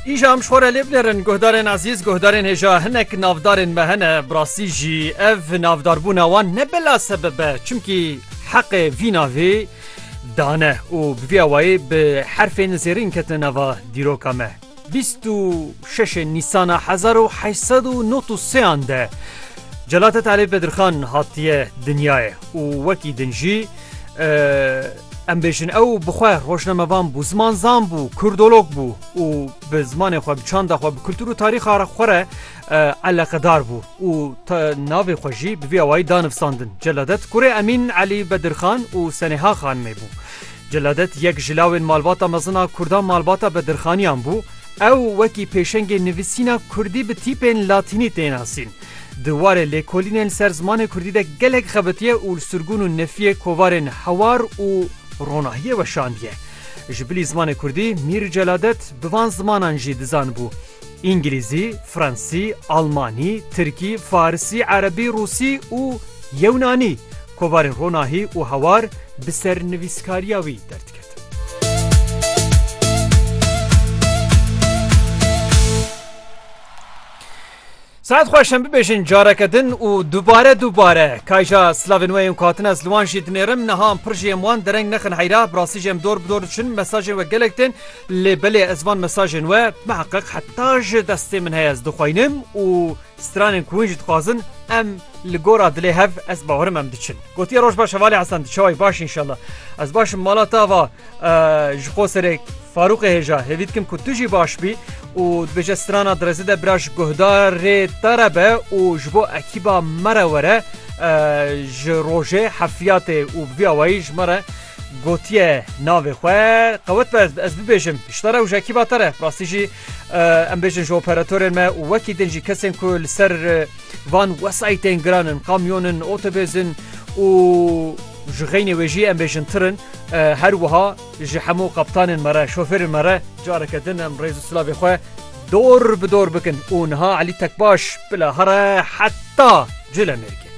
Îja em ji xwe re lê binêrin guhdarên ezîz, guhdarên hêja hinek navdarên me hene, bi rastî jî ev navdarbûna wan ne bila sebeb e çimkî heqê vî navê dane û bi vî awayî bi herfên zêrîn ketine nava dîroka me. Bîst û şeşê Nîsana hezar û heşt sed û nod û sêyan de Celadet Elî Bedirxan hatiye dinyayê û wekî din jî Em bêjin ew bi xwe rojnamevan bû, zimanzan bû, kurdolog bû û bi zimanê xwe, bi çanda xwe, bi kultur û tarîxa xwe re eleqedar bû û navê xwe jî bi vî awayî da nivsandin. Celadet kurê Emîn Elî Bedirxan û Senêha Xanimê bû. Celadet yek ji lawên malbata mezin a kurdan malbata Bedirxaniyan bû. Ew wekî pêşengê nivîsîna kurdî bi tîpên latînî tê nasîn. Di warê lêkolînên ser zimanê kurdî de gelek xebitiye û li sirgûn û nefiyê kovarên hewar û ronahiyê weşandiye. Ji bilî zimanê kurdî Mîr Celadet bi van zimanan jî dizanibû, Îngilîzî, Fransî, Almanî, Tirkî, Farisî, Erebî, Rûsî û Yewnanî. Kovarên ronahî û hewar bi ser nivîskariya wî derdiketin. Saet xweş em bibêjin careke din û dubare dubare. Kayja slavên we yên ku hatin ez li wan jî dinêrim niha em pir jî êm wan dereng nexin heyra. Bi rastî jî em dor bi dor diçin mesajên we gelek tên lê belê ez van mesajên we miheqiq heta ji destê min heye ez dixweynim û stranên ku hûn jî dixwazin em li gora dilê hev ez bawerim em diçin. Gotiye roj baş hevalê Hesen tu çawayî baş înşallah ez baş im mala ta va. ji xwe serê Farûqê hêja hêvî dikim ku tu jî baş bî û dibêje strana direzê de bira ji guhdarê te re be û ji bo ekîba me re were ji rojê hefiyatê û bi vî awayî ji me re gotiye navê xwe qewet be ez bibêjim şita re û ji ekîba te re rastî jî em bêjin ji operatorên me û wekî din jî kesên ku li ser Van wesayîtên giran in, kamyon in, otobês in û ji xeynê wê jî em bêjin tir in. Her wiha ji hemû qeptanên me re, şofêrên me re careke din em rêz û silavê xwe dor bi dor bikin û niha Elî Tekbaş bila here heta Colemêrgê.